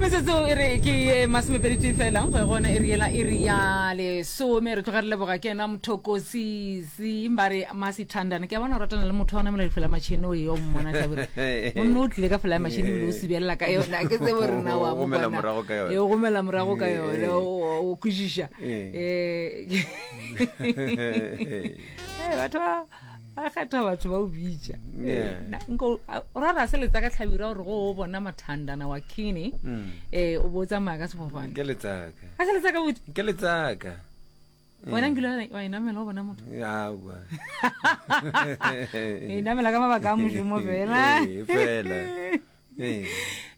metsotso e re ke ye masomepedi tee fela go ye gona e re yela e re ya lesome re tloga re leboga ke ena mothokosisi ba re masithandana ke a bona o ratana le motho wa o namela difela matšhini o yo mmona tlhabere gonne o tlile ka fela ya matšhini ebile o sibelela ka yona ke tsebo re na wa mo bona e o gomela morago ka yone o kwešiša um batho ba a kgetha batho ba o bitša rara se letsa ka tlhabira gore go o bona mathandana wa kine um o bo o tsamaya ka sefofane ke letsaka a se letsa ka botse ke letsaka wena nkile wa inamela o bona motho awa inamela ka mabaka a mošomo fela fela ee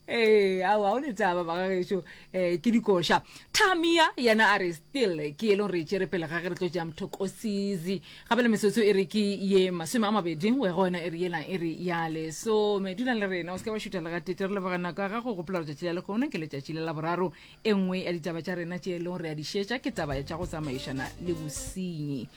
ee ao ao le taba ba gageso um eh, ke dikoša tamia yena a re still ke e leng re e tšere pele ga ge re tlo ja mthokosizi gape le mesotso e re ke ye masome a mabedi go ya go yona e re yela e re ya lesome dulang le rena o se ka wa šuta le gatete re leboga nako ya gago gopola gore tšatši la lekgono ke letšatši le la boraro e nngwe ya ditaba tša rena tše e leng gore re a di šetša ke taba ya tša go tsamaišana le bosenyi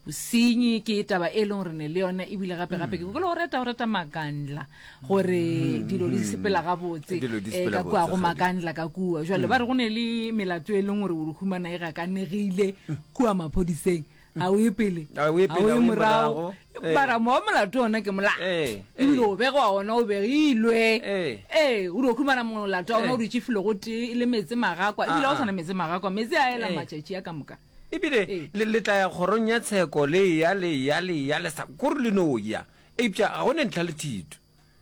bosenyi ke taba e leng gore ne le yona ebile gape gape ke mm. kolo go reta go reta makandla gore mm. dilo di sepela gabotse eh, ka kua go makandla ka kua jale mm. ba re go ne le melato e leng gore o re humana e gakanegile kua maphodiseng ga o e pele ga o e morago eh. bara mowa molato ona ke molato eh, ebile o bege wa ona o begilwe ee o di o humana molato wa ona o ditšefile go tee e le metse magakwa ebile ga o ah, ah. tshwana metse magakwa metse a ela matšatši a ka moka E bile le, le tla ya kgorong ya tsheko, le eya, le eya, le eya, le sa kore le no ya. Eupša ga go ne ntlha le thito.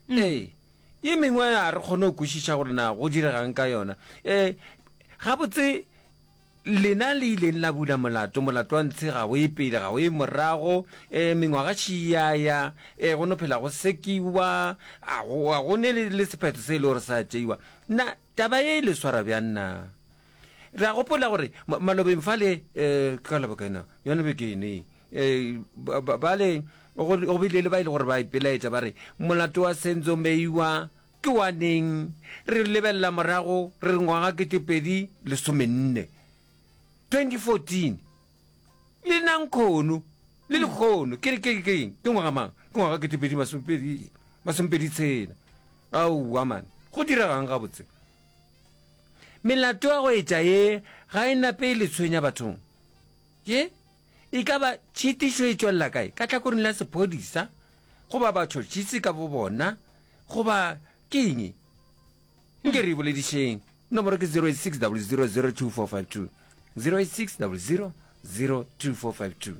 Ee. Ye mengwe ga re kgone go kwešiša gore na go direga'ng ka yona. Ee, gabotse, lena le ileng la bula molato, molato wa ntshe, ga o ye pele, ga o ye morago, ee, mengwaga še e a ya, ee, go no phela go sekiwa, ga go, ga go ne le, le sephetho se e le gore sa tšeiwa. Na, Taba ye e le swara bjang na? Re a gopola gore ma, malobeng fale, e, ke ka Labokena, yona beke eno ye, e, ba, ba, bale go, go bile le ba e le gore ba ipelaetša ba re, Molato wa Senzo Meyiwa ke wa neng? Re lebelela morago, re re ngwaga ketepedi lesomenne, 2014. Le nna nkgono, le lekgono, ke re ke ke eng? Ke ngwaga mang? Ke ngwaga kete pedi masomepedi, masomepedi tshela. Aowa man, go diregang gabotse? Melato ya go etša ye ga e nape e le tshwenya bathong. Ye, e ka ba tšhitišo e tšwelela kae? Ka tlhakoring la sephodisa, goba batšhotšhisi ka bo bona, goba ke eng? Nke re e boledišeng. Nomoro ke 0860002452, 0860002452.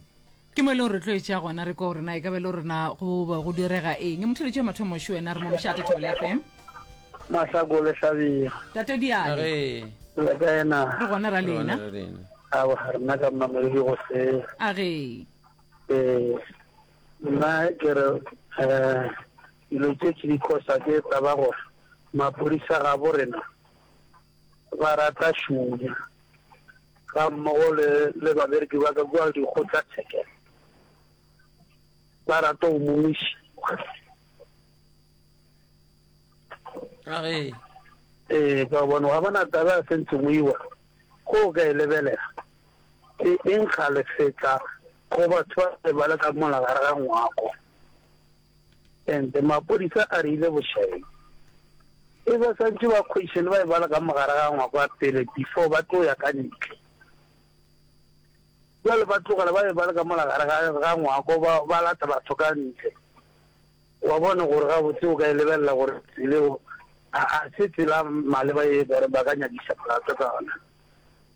Ke mo e lego re tlo e tšea gona re kwa gore na e ka be le gore na go be go direga eng. Motheletši wa mathomo šo wena re mo mošate Thobela FM. Masako le hlabega. Tate Diane. Re. Le kae na? Re gona ra lena. Re lena. A wa rena ka mmamedi go se. A ge. Eh. Nna ke re eh Dilo tše tše di kosa ke taba gore maphodisa gabo rena ba rata šunya ga mmogo le le babereki ba ka kua dikgotla tshekelo ba rata o momiši a re eh ka bona ga bona taba ya sentse mo iwa go ka e lebelela ke eng ga le fetla go batho ba ba le ka mola ga re ga ngwako Ente mapodisa a rile bošaedi e ba santše ba kgodiše le ba e bala ka mogare ga ngwako a pele before ba tlo ya ka ntle. Jwale ba tlogela ba e bala ka mola gare ga ga ngwako ba ba lata batho ka ntle. Wa bona gore ga botse o ka e lebelela gore tsele o a a se tsela maleba e gore ba ka nyakisa molato ka ona.